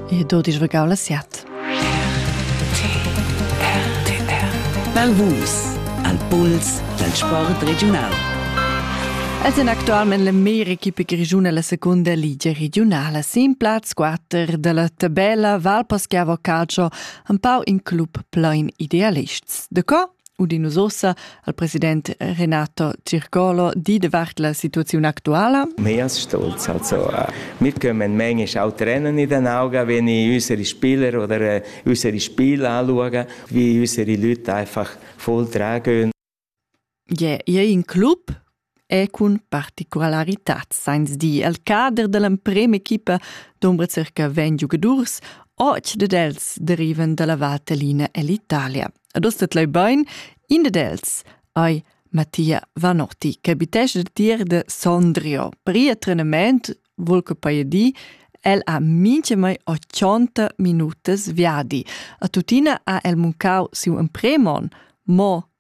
E do dis vegau la siat. Malvus, al puls dal sport regiunal. Els en actualment l'America grigiuna la seconda ligia regionala sin plaz 4 della tabella Valposchiavo Calcio, un pau in club plein idealists. De co? udinus ossa al president Renato Circolo di davart la situaziun actuala. Mias stolz also mitkommen manchmal auch Rennen in den Augen, wenn ich unsere Spieler oder unsere Spieler anschaue, wie unsere Leute einfach voll tragen. Je, je in Club e cun particularitat sainz dir al cader da l'emprem'equipa dombra circa 20 giugadurs, och dad els derivan da la Vaterlina e l'Italia. Ad ostet leu bein, in dad els ei Mattia Vanotti, che abitesce tier de Sondrio. Per ir trenament, vuol che poi di, el ha minche mai 80 minutas viadi. A tuttina ha el muncau siu empremon, mo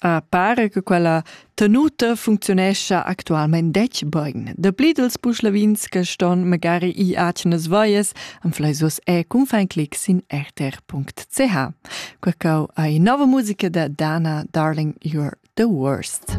Pare che quella tenuta funcziunescha actualmein detg bein. Dapli dels buschlavins che ston magari i atgenas voies am flaisos e cun fein clic sin rtr.ch. Quacau ei nova musica da Dana Darling You're the Worst.